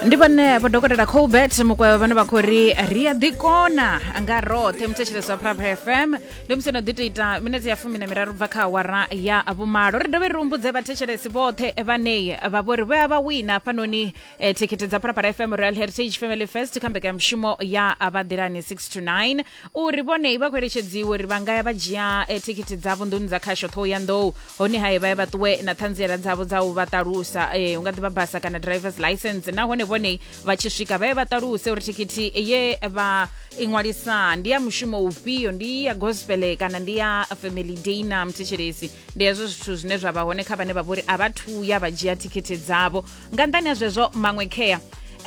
ndi vhane vha dokotela colbert mukwevho vhane vha khou ri ri a ḓikona nga roṱhe muthetshelesi wa prab fm ndi musi no ḓi to ita minete ya fumi na miraru bva kha awara ya vhumalo ri dovhe ri humbudze vhathetshelesi vhoṱhe vhanei vha vhori vho ya vha wina hafhanoni eh, thikhithi dza prapara fm royal heritage family fest kha mbekanyamushumo ya vhaḓilani 6 to 9 uri vhone vha khou eletshedziwa uri vha nga ya vha dzhia eh, thikhithi dzavho nḓuni dza khasho thohoyandou hone hae vha ye vha ṱuwe na ṱhanziela dzavho dza u vha ṱalusa eh, u nga ḓivha basa kana drivers license nahone vhone vha tshi swika vha ye vha ṱaluse uri thikhithi ye vha i ṅwalisa ndi ya mushumo ufhio ndi ya gospel kana ndi ya family day na mthetshelesi ndi hezwo zwithu zwine zwa vha hone kha vhane vha vhori a vha thuya vha dzhia thikhithi dzavho nga nṱhani ha zwezwo maṅwe khea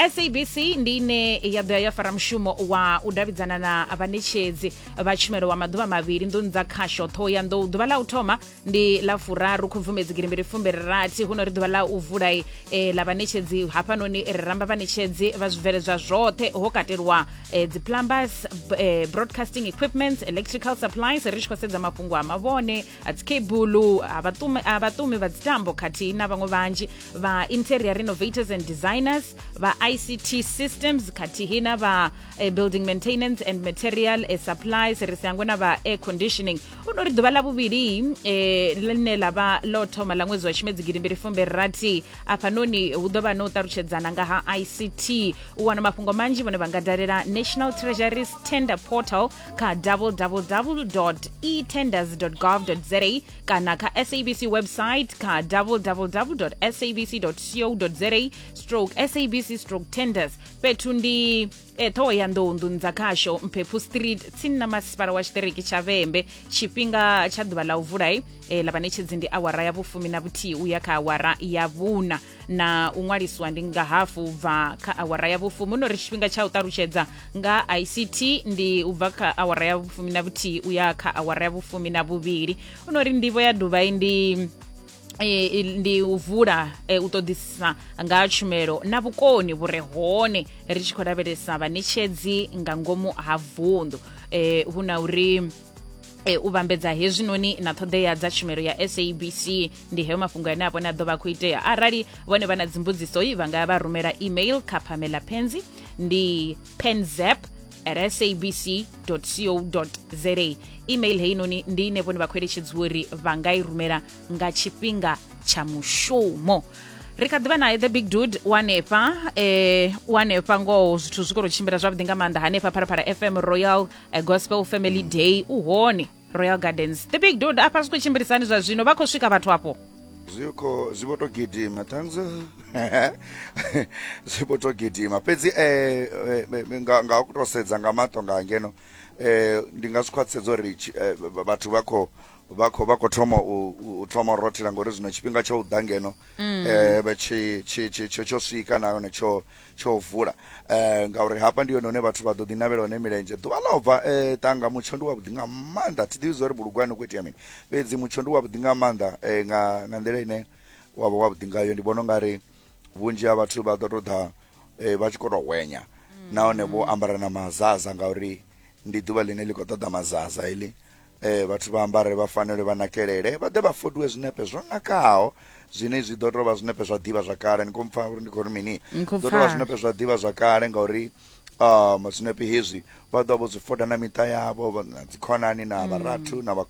sabc ndi ine ya ḓo ya ya fara mushumo wa u davhidzana na vhanetshedzi vha tshumelo wa maḓuvha mavhili nḓuni dza khasho ṱhoho ya nḓou ḓuvha ḽa u thoma ndi ḽa furaru khubvumedzi girimbiri fumbiri rathi huno ri ḓuvha ḽa u vula e, eh, ḽa vhanetshedzi hafhanoni ri ramba vhanetshedzi vha zwibveledzwa zwoṱhe ho katelwa e, eh, dziplumbers e, eh, broadcasting equipments electrical supplies ri tshi khou sedza mafhungo a mavhone dzikebulu vhaṱumi ah, vhaṱumi vha dzitambo khathihi na vhaṅwe vhanzhi vha interior renovators and designers vha ict systems khathihi na vha eh, building maintenance and material eh, supplies ri si hangwe na vha air conditioning u no ri ḓuvha ḽa vhuvhili eh, ḽine ḽa vha ḽo thoma ḽa ṅwedzi wa tshimedzi gidimbili fumbe rathi afhanoni hu ḓo vha no ṱalutshedzana nga ha ict u wana mafhungo manzhi vhone vha nga dalela national treasuries tender portal kha www etenders gov za kana kha sabc website kha www sabc co za stroke sabc stroke tenders fhethu ndi e, ṱhohoyanḓou nḓuni dza khasho mphephu street tsini na masipala wa tshiṱiriki tsha vhembe tshifhinga tsha ḓuvha ḽa u vulai e, ḽa vhaṋetshedzi ndi awara ya vhufumi na vhuthihi u ya kha awara ya vhuna na u ṅwaliswa ndi nga hafu bva kha awara ya vhufumi no ri tshifhinga tsha u ṱalutshedza nga ict ndi u bva kha awara ya vhufumi na vhuthihi u ya kha awara ya vhufumi na vhuvhili u no ri ndivho ya dubai ndi e, i- ndi u vula e, u ṱoḓisisa nga ha tshumelo na vhukoni vhu re hone ri tshi khou lavhelesa vhaṋetshedzi nga ngomu ha vunḓu e, hu na uri e, u vhambedza hezwinoni na ṱhoḓea dza tshumelo ya sabc ndi heyo mafhungo ane a vhone a ḓo vha khou itea arali vhone vha na dzimbudziso vha nga vha rumela email kha pamela penzi ndi penzap at sabc co za email heinoni ndi ine vhone vha khou eletshedziwa uri vha nga i rumela nga tshifhinga tsha mushumo ri kha ḓivha naye the big dude wanefha eh wanefha ngoho zwithu zwi khou tshimbila zwavhuḓi nga maanḓa hanefha pharapara fm royal a gospel family day u hone royal gardens the big dod afha zwi khou tshimbilisani zwa zwino vha khou swika vhathu afho zwi khou zwi vho to gidima thanks zwi vho to gidima fhedzi eh, eh, eh nga nga u to sedza nga maṱo nga ngeno eh ndi nga zwi khwaṱhisedza uri eh, vhathu vha khou vha khou vha khou thoma u thoma u rothela ngori zwino tshifhinga tsha u ḓa ngeno um mm. eh, tsho swika nahone tsho tsho vula eh ngauri hafha ndi yone hune vhathu vha ḓo ḓi navhela hone milenzhe ḓuvha ḽa bva eh tanga mutsho ndi wa vhuḓi nga maanḓa thi ḓivhi zwa bulugwani ku itea mini fhedzi mutsho ndi wa vhuḓi nga maanḓa eh nga nga nḓila ine wa vha wa vhuḓi ngayo ndi vhona ungari vhunzhi ha vhathu vha ḓo to ḓa eh vha tshi kho to hwenya nahone vho ambara na mazaza ngauri ndi ḓuvha ḽine ḽi khou ṱoḓa mazaza heḽi Ee, vhathu vha ambare vha fanelwe vha nakelele vha ḓe vha fodiwe zwinepe zwo nakaho zwine zwi ḓo tou vha zwinepe zwa ḓivha zwa kale ni khou mpfa uri ndi khou ri mini Ni khou ḓo tou vha pfa. zwinepe zwa ḓivha zwa kale ngauri um zwinepe hezwi vha ḓo vha vho zwi foda na miṱa yavho vha- na dzikhonani na vharathu na vha